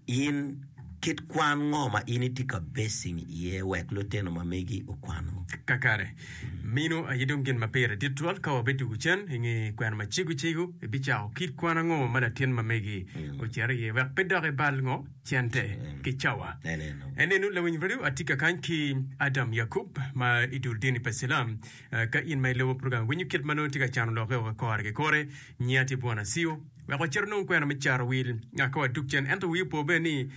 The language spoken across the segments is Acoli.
In, kit kwan ngo ma in itye ka basing iye wek lutino ma megi okwano? Kakare, mino aye dong gin ma pire dit twal ka wabetugo cen i nge kwena ma cego cego. Ibicako kit kwan ango ma latin ma megi ocito iye wek pe dok ibal ngo cente ki cawa? Enenu, lawiny redio atye ka kany ki Adam Yakub ma i dul dini pa Cilam. Ka in ma ilubo program winyo kit ma nongo tye ka cano lokke woko i kore ki kore, nyinga tye Bwana Siyo. wek wacit onong kwena me caro wil ngat ka watuk cen. Ento wii opo bene ni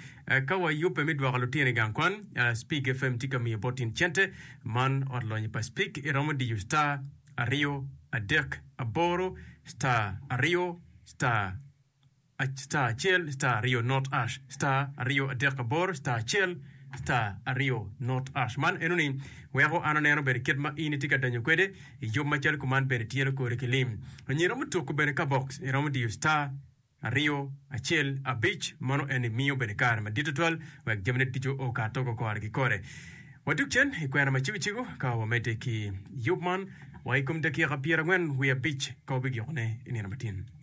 ka wayubbe me dwoko lutino i gang kwan, Spig FM tye ka miyo bot in cente man. Ot lonyo pa Spig iromo diyo star aryo adek aboro star aryo star star acel star aryo not ash star aryo adek aboro star acel star aryo not ash. Man enoni weko an aneno bene kit ma in itye ka donyo kwede. I yub macalo kuman bene tyelo kori ki lim. Onyo iromo tuku bene ka box iromo diyo star aryo acel abic mano eni miyo bene kare madit tutwal wek jamine ducu o ka togo kore ki kore. Wadug cen i kwena ma cego cego ka wamedde ki yub man wa i kom dakika pyerangwen wiye abic ka wabigikone i nino matin.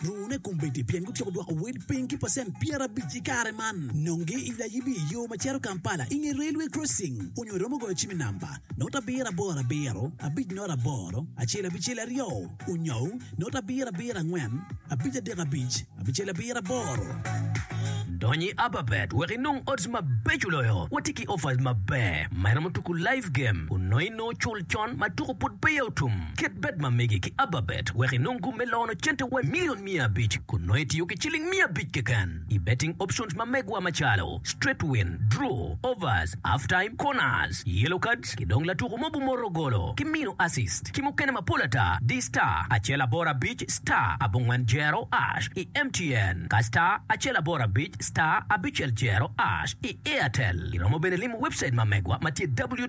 Rune kombeddi pien gutyeko dwoko wel piny ki pacent pyerabic i kare man. Nonge i layibi i yo ma cito Kampala i nge Railway Crossing onyo iromo goyo cim i namba, not abiro aboro abiro, abic not aboro, acel abicel aryo, onyou not abiro abiro angwen, abic adek abic, abicel abiro aboro. Dony i App Bet wek inong odds mabeco loyo. Watye ki offers maber ma iromo tuku live game onongo inongo cul Con ma tuko pud peya otum, kit bed ma mege ki ababet wek inong gum me lono cente wa milion miya abic kun nongo itiyo ki ciling miya abic keken i betting options ma megwa macalo, straight win, draw, overs, half time, corners, yellow cards ki dong latuko ma obumoto golo ki mino assist ki mukene mapol ata di star acel aboro abic star abongwen jero ash i MTN ka star acel aboro abic star abicel jero ash i Airtel. Iromo bene limo webcite ma megwa ma tye ww.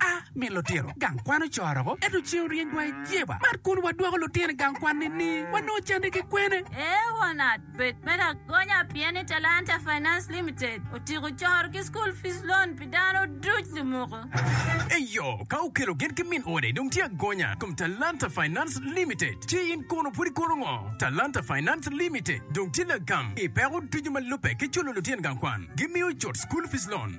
A min lutino gang kwan ocoro ko ento ceng oryeny dwai jeba man kun wa dwoko lutino gang kwan ni ni wa nongo cande ki kwene. A wanat bed me lagonya pien ni Talanta Finance Limited otiko coro ki school fees loan pi dano duc lumuku. Eyo ka okelo gen ki min ode dong tye agonya kom Talanta Finance Limited ci in kono pud ikono ngo? Talanta Finance Limited dong tye lagam ipeko ducu ma lube ki culo lutino gang kwan gi miyo cut school fees loan.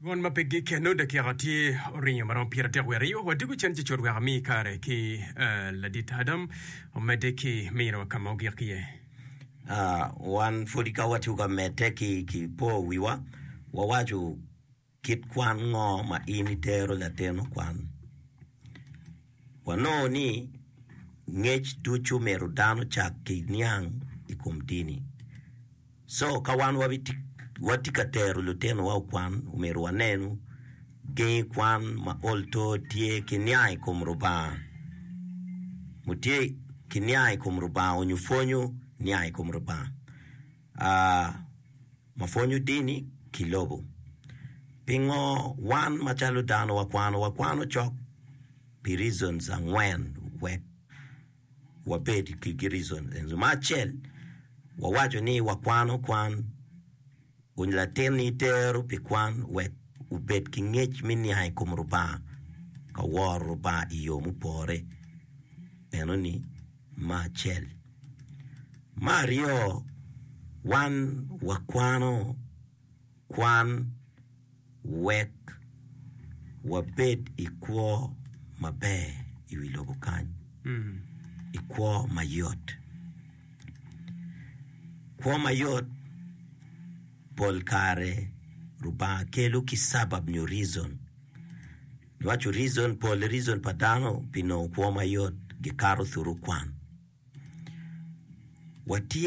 Mon ma pe gikeno dakika tye oringo maromo pyeradek wiye aryo wa diko cen cecod wek ami kare ki ladit Adam omedde ki miniwa ka ma ogik iye. Wan pwod ka watye ka medde ki po wiwa, wawaco kit kwan ngo ma in itero latin okwan. Wanongo ni ngec ducu myero dano ocak ki niang i kom dini. So, ka wan watye ka tero lutinowa okwan, omyero wanen gengi kwan ma ol to tye ki niang i kom Lubanga. Mu tye ki niang i kom Lubanga onyo pwonyo niang i kom Lubanga ma pwonyo dini ki lobo. Pingo wan macalo dano wakwano? Wakwano cok pi reasons angwen wek. wabed ki girico ento me acel wawaco ni wakwano kwan kun latinni tero pi kwan wek obed ki ngec me niang i kom Lubanga ka woro Lubanga i yo mupore enoni me acel. Me aryo wan wakwano kwan wek wabed i kwo maber i wi lobo kany, i kwo mayot. Kwo mayot pol kare Lubanga kelo ki sabab nyo reason. Niwaco reason, pole reason pa dano pi nongo kwo mayot gikato thuru kwan. Watye.